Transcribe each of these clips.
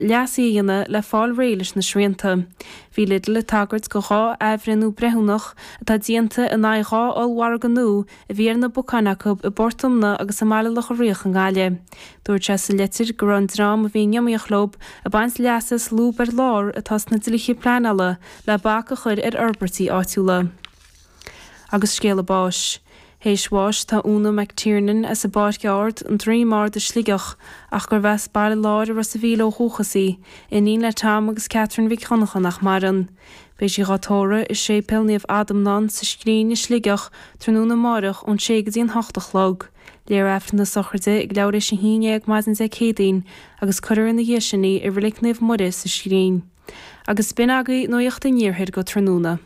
leasuithe a dhéanamh le fáil réidh leis na srianta. Bhí Lidl ag tagairt do dhá athbhreithniú breithiúnach atá déanta in aghaidh dhá ollmhargadh nua a bhí ar na bacáin acu i bPort Omna agus i mBaile Locha Riach i nGaillimh. Dúirt sé sa litir go raibh an dream a bhí in iomaíocht leo ag baint leas as lúb ar lár atá sna dlíthe pleanála le bac a chur ar fhorbairtí áitiúla. agus scéal a báis. Théis bháis atá Úna McTiernan as an bPáirc Ard, An Droim Ard i Sligeach, ach gurb as Baile Láir i Ros a' Mhíl ó dhúchas í, iníon le Tom agus Catherine Mhic Dhonncha nach maireann. Beidh sí dhá tórradh i Séipéal Naomh Adhamhnán sa Scrín i Sligeach tráthnóna amáireach ón sé go dtí an hocht a chlog. Léifear Aifreann na sochraide ag leathuair théis a haon dhéag maidin Dé Céadaoin agus cuirfear ina dhiaidh sin í i Reilig Naomh Muire sa Scrín. Agus b'in agaí nuaíocht an iarthair go tráthnóna.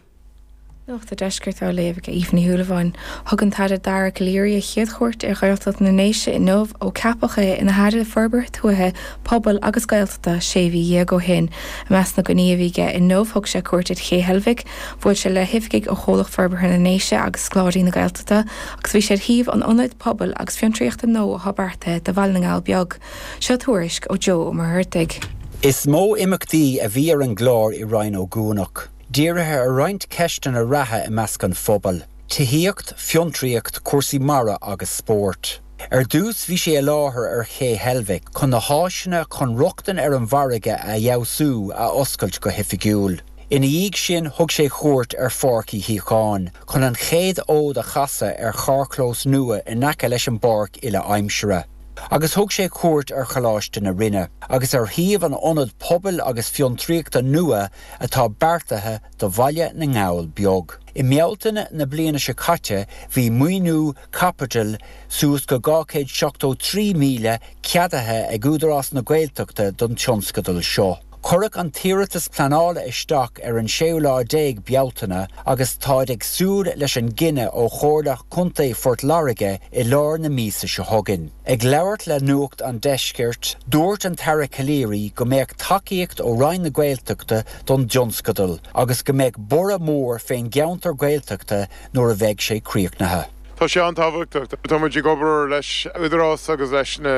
Nuacht a' Deiscirt á léamh ag Aoife Ní Shúilleabháin. Thug an tAire Dara Calleary a chéad chuairt ar Ghaeltacht na nDéise inniu ó ceapadh é ina Aire Forbartha Tuaithe, Pobail agus Gaeltachta sé mhí dhéag ó shin. I measc na gcoinní a bhí aige inniu thug sé cuairt ar Ché Heilbhic, bhuail sé le hoifigigh ó Chomhlacht Forbartha na nDéise agus Scoláirí na Gaeltachta agus bhí sé ar shuíomh an ionaid pobail agus fiontraíochta nua atá beartaithe do Bhaile na nGall Beag. Seo tuairisc ó Joe Ó Muircheartaigh. Is mó imeacht a bhí ar an gclár i Rinn Ó gCuanach, dírithe ar roinnt ceisteanna reatha i measc an phobail, tithíocht, fiontraíocht, cúrsaí mara agus spórt. Ar dtús bhí sé i láthair ar Ché Heilbhic chun na háiseanna chun rochtain ar an bhfarraige a fheabhsú a oscailt go hoifigiúil. Ina dhiaidh sin thug sé cuairt ar Pháirc Uí Shíocháin chun an chéad fhód a chasadh ar charrchlós nua in aice leis an bpáirc uile-aimsire. agus thug sé cuairt ar Choláiste na Rinne agus ar shuíomh an ionaid pobail agus fiontraíochta nua atá beartaithe do Bhaile na nGall Beag. I mBealtaine na bliana seo caite bhí maoiniú caipitil suas go 273,000 ceadaithe ag Údarás na Gaeltachta don tionscadal seo. Cuireadh an t-iarratas pleanála isteach ar an séú lá déag Bealtaine agus táid ag súil leis an gcinneadh ó Chomhairle Chontae Phort Láirge i lár na míosa seo chugainn. Ag labhairt le Nuacht an Deiscirt, dúirt an tAire Calleary go mbeadh tacaíocht ó Roinn na Gaeltachta don dtionscadal agus go mbeadh borradh mór fén gceantar Gaeltachta nuair a bheidh sé críochnaithe. Tá sé an-tábhachtach. Tá muid ag obair leis an Údarás agus leis na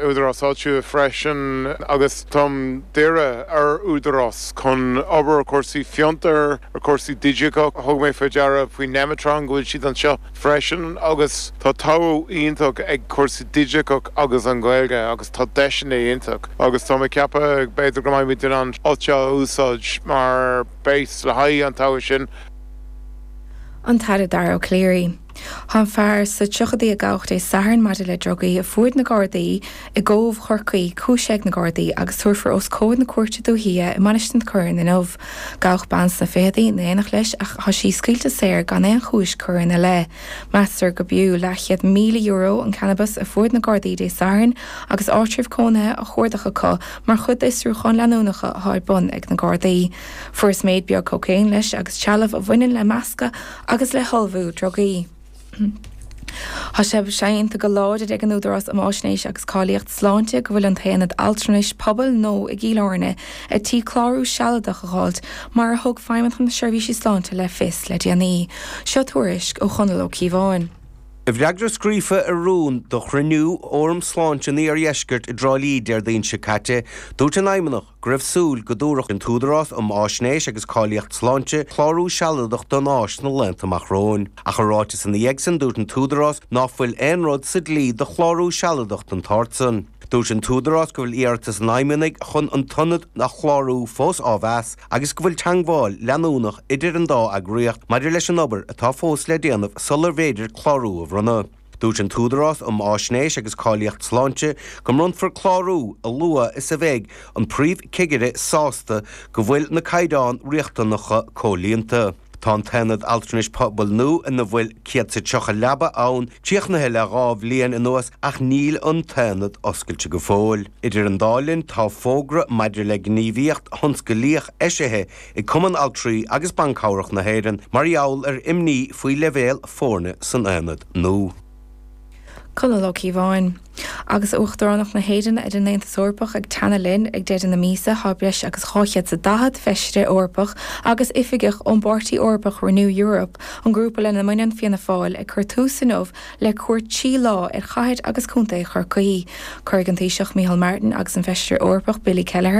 húdaráis áitiúla freisin agus táim ag iarraidh ar Údarás chun obair cúrsaí fiontair, cúrsaí digiteacha. Thug mé faoi deara faoi Nemeton go bhfuil siad anseo freisin agus tá todhchaí iontach ag cúrsaí digiteacha agus an Ghaeilge agus tá deiseanna iontach agus táim ag ceapadh b'fhéidir go mbeidh muid in ann an áit seo a úsáid mar base le haghaidh an todhchaí sin. An tAire Dara Ó Cléirigh. Tá an fear sa tríochaidí a gabhadh Dé Sathairn maidir le drugaí a fuair na Gardaí i gCóbh Chorcaí cúisithe ag na Gardaí agus tabharfar os comhair na cúirte dúiche i Mainistir na Corann inniu. Gabhadh bean sna fichidí in éineacht leis ach tá sí scaoilte saor gan aon chúis curtha ina leith. Meastar gurb fhiú leathchéad míle euro an cannabas a fuair na Gardaí Dé Sathairn agus áitreabh cónaithe á chuardach acu mar chuid d'fhiosrúcháin leanúnacha atá ar bun ag na Gardaí. Fuarthas méid beag cócaoin, leis, agus trealamh a bhaineann le meascadh agus le hullmhú drugaí. Tá sé séanta go láidir ag an Údarás um Fháisnéis agus Cáilíocht Sláinte go bhfuil an tAonad Altranais Pobail nua i gCill Airne ar tí clárú sealadach a dh'fháil, mar a thug Feidhmeannacht na Seirbhíse Sláinte le fios le déanaí. Seo tuairisc ó Chonall Ó Cíobháin. I bhfreagra scríofa ar rún do chruinniú Fhóram Sláinte an Iardheiscirt i dTrá Lí Déardaoin seo caite, dúirt an Fheidhmeannacht, go raibh súil go dtabharfadh an tÚdarás um Fháisnéis agus Cáilíocht Sláinte clárú sealadach don áis sna laethanta amach romhainn. Ach i ráiteas ina dhiaidh sin, dúirt an tÚdarás ná fuil aon rud sa dlí do chlárú sealadach den tsórt san. Dúirt an tÚdarás go bhfuil iarratas an fheidhmeannaigh chun an t-ionad a chlárú fós á mheas agus go bhfuil teangmháil leanúnach idir an dá eagraíocht maidir leis an obair atá fós le déanamh sularbh fhéidir clárú a bhronnadh. Dúirt an tÚdarás um Fháisnéis agus Cáilíocht Sláinte go mbronnfar clárú a luaithe is a bheidh an Príomh-Chigire sásta go bhfuil na caighdeáin riachtanacha comhlíonta. Tá an tAonad Altranais Pobail nua ina bhfuil 130 leaba ann críochnaithe le dhá bhliain anuas ach níl an tAonad oscailte go fóill. Idir an dá linn, tá fógra maidir le gníomhaíocht thionsclaíoch eisithe ag Cumann Altraí agus Ban Cabhrach na hÉireann mar gheall ar imní faoi leibhéal foirne san aonad nua. Conall Ó Cíobháin. Agus Uachtaránacht na hÉireann ar an Aontas Eorpach ag teannadh linn, ag deireadh na míosa tá breis agus 240 Feisire Eorpach agus oifigeach ón bpáirtí Eorpach Renew Europe, an grúpa lena mbaineann Fianna Fáil, ag cur tús inniu le cuairt trí lá ar chathair agus contae Chorcaí. Cuirfidh an Taoiseach Micheál Martin agus an Feisire Eorpach Billy Kelleher,